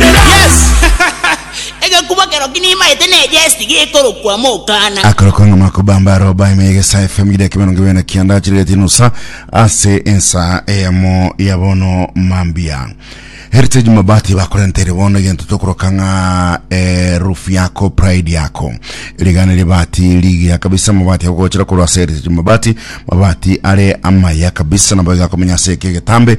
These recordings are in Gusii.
Yes! Egekuba kero ki nimaete nejesti gekorokwa Mokana. Akorokwa ng'a makobamba aroba ime yegesa FM gidaki mirongo ibere na kianda achirereti nusa ase ensa eyamo ya bono mambia Heritage Mabati bakorentere bono egento tokoroka ng'a eh, roof yako pride yako rigana ribati rigiya kabisa mabati agogochera korwa ase Heritage Mabati mabati are amaya kabisa nabo igakomenya ase eke getambe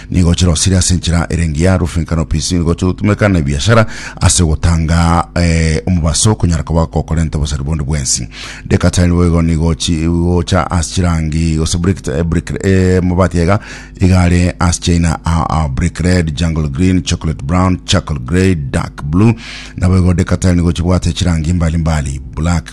Nigo chirosire ase enchera ere engiya, roofing canopies, nigo chigotumeka na ebiashara ase ogotanga eh, omobaso okonyara koba gokorenta obosari bonde bwensi. Deca tile boigo nigo chigocha ase chirangi gose brick, eh, brick, eh, mabati aiga igare ase chaina a, a brick red, jungle green, chocolate brown, charcoal grey, dark blue. Naboigo deca tile nigo chibwate chirangi mbali mbali, black,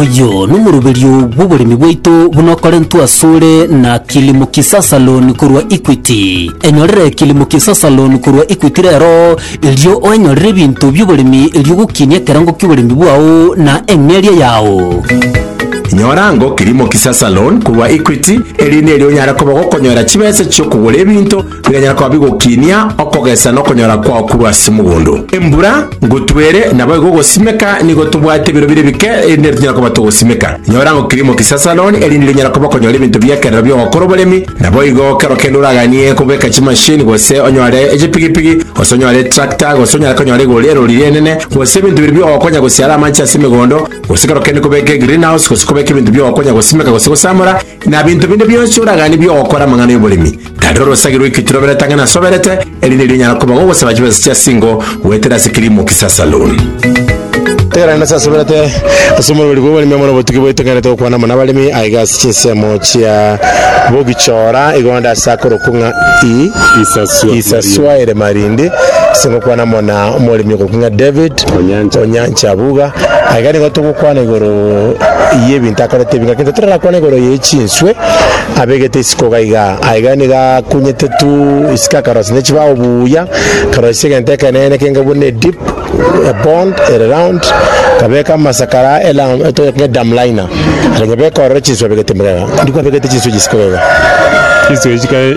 Oyio nomoroberio bw'oboremi bwaito buna okorentwe asore na Kilimo Kisasa Loan korwa Equity. Enyorere Kilimo Kisasa Loan korwa Equity rero, erio oenyorere ebinto bi'oboremi erio ogokinia ekerango ki'oboremi bwao na eng'eria yao. Nyora ango Kilimo Kisasa Loan korwa Equity, eri nerio onyare koba ogokonyora chibesa chi'okogora ebinto Bikanyara koba bigokinia okogesa na okonyora kwao korwa ase mogondo. Embura ngotwere, naboigo ogosimeka nigo tobwate ebiro bire bike erinde nero tonyare koba togosimeka. Nyora ng'o kirimo kisasaroni erinde rinyare koba okonyora ebinto bi'ekerero bi'ogokora oboremi, naboigo kero kende oraganie kobeka chimashini gose onyore echipigipigi gose onyore etractor gose onyare konyora igoro erori ri'enene gose ebinto bire bi'ogokonya gosiara amache ase emegondo gose kero kende kobeka egreenhouse gose kobeka ebinto bi'ogokonya gosimeka gose gosamora na binto binde bionsi oraganie bi'ogokora amang'ana y'oboremi. Tarera orosage rw'ekitu roberete ang'e nasoberete, eri nerio onyara koba gogosaba chibesa chia singo goetera ase Kilimo Kisa Saloon. Tera nende sasoberete ase omorweri bw'oboremi amo nobotuki boiteng'enete gokwana amo nabaremi aye gasi chinsemo chia bogichora igonda ase akorokwo ng'a isaswa ere marindi ase gokwana amo na omoremi ogoku ng'a David Onyancha Buga aye gari nigo togokwana igoro y'ebinto akorete ebinga kento torakwana igoro ye chinswe abegete isiko iga iga, aye iga nigo akunyete tu isiko akarosia ne chibao buya, akarosia egento ekenene kenge buna edip, ebond, ere round, akabeka amasakara elam etoya kenge dam liner, are ng'ebeka ororo chinsu abegete murega, ndiko abegete chinsu echi isiko iga iga. Chinsu echi chikare.